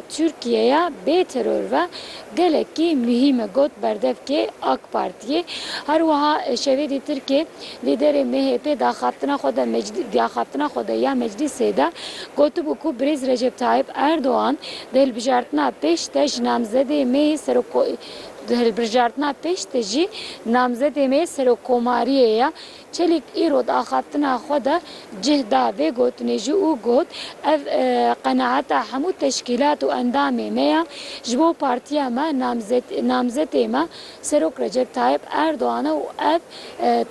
Tirkiyeya bê teror ve gelekî muhîm e, got berdevkê AK Partiyê. Her wiha şevê dî Tirkê lîderê MHP'ê daxaptina xwe de meclî daxaptina xwe de ya meclîsê de gotibû ku birêz Recep Tayyip Erdogan di hilbijartina pêş de ji namzedê me yê serok di hilbirjartina pêş de jî namzedê me yê serokkomariyê ye. Çelîk îro di axaftina xwe de cih da vê gotinê jî û got, Ev qenaeta hemû teşkîlat û endamê me ye. Ji bo partiya me namzetê me Serok Recep Tayip Erdogan e û ev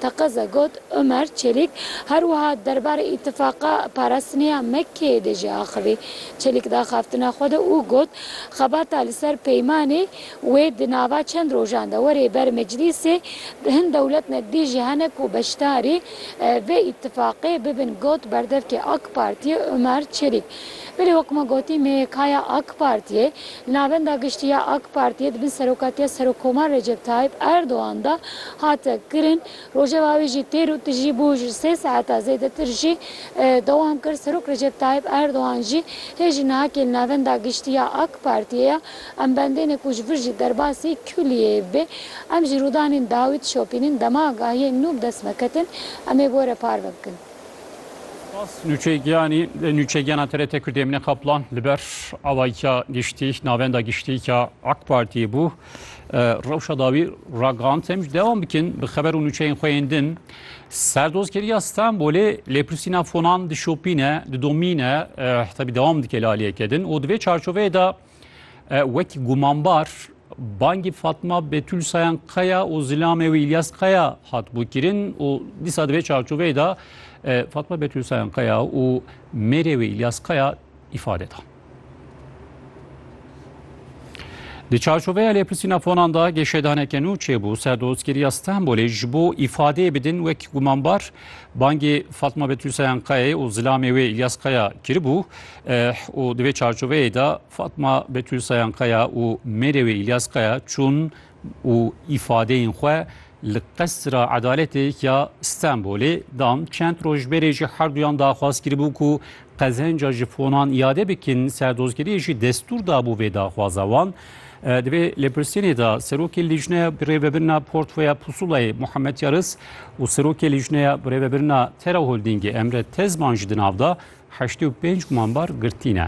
teqez e got Omer Çelîk. Her wiha derbarê îtifaqa parastinê ya MK'ê de jî axivî Çelîk di axaftina xwe de û got, Xebata li ser peymanê, Wê di nava çend rojan de were ber meclîsê, hin dewletmedbî jî hene ku beşdarî vê îtîfaqê bibin got berdevkê ak Partiyê Omer Çelîk. Belê wek ma gotî MYKya ak Partiyê li Navenda Giştî ya ak Partiyê di bin serokatiya Serokkomar Recep Tayîp Erdogan de hate kirin. Rojeva wê jî têr û tijî bû ji sê saeta zêdetir jî dewam kir. Serok Recep Tayîp Erdogan jî hê ji niha ke li Navenda Giştî ya ak Partiyê ye. Em bendêne ku ji vir jî derbasî kulîyê bê. Em ji rûdanên dawî dişopînin. Dema gahiyên nû bi dest me ketin, em ê gore par me bikin. Spas nûçeyê giyanî, nûçeyê giyana TRT Kurdî Emîne Kaplan li ber avayiya giştî, navenda giştî ya AK Partiyê bû. Rewşa dawî ragihand. Em jî dewam bikin bi xeber û nûçeyên xwe yên din. Serdozgeriya Stenbolê lêpirsîna fonan dişopîne, didomîne, tevî dewam dike li aliyeke din û di vê çarçoveyê de Wekî gumanbar bangî Fatma Betûl Sayan Kaya û zilamê wî Îlyas Kaya hatibû kirin û dîsa di vê çarçoveyê de Fatma Betûl Sayan Kaya û mêrê wî Îlyas Kaya îfade da. Di çarçoveya lêpirsîna fonan da geşedaneke nû çêbû ser dostkiriya Stenbolê ji bo îfadeyê bidin wek gumanbar bangê Fatma Betûl Sayan Kayayê û zilamê wê Îlyas Kaya kiribû û di vê çarçoveyê de Fatma Betûl Sayankaya û mêrê wê Îlyas Kaya çûn û îfadeyên xwe li qesra edaletê ya Stenbolê dan. Çend roj berê jî her duyan daxwaz kiribû ku qezenca ji fonan îade bikin, serdozgeriyê jî destûr dabû vê daxwaza wan. Di vê lêpirsînê de Serokê Lîjneya Birêvebirina Portfeya Pusulayê Muhammed Yaris û Serokê Lîjneya Birêvebirina Tera Holdîngê Emre Tezman jî di nav de heştê û pênc gumanbar girtî ne.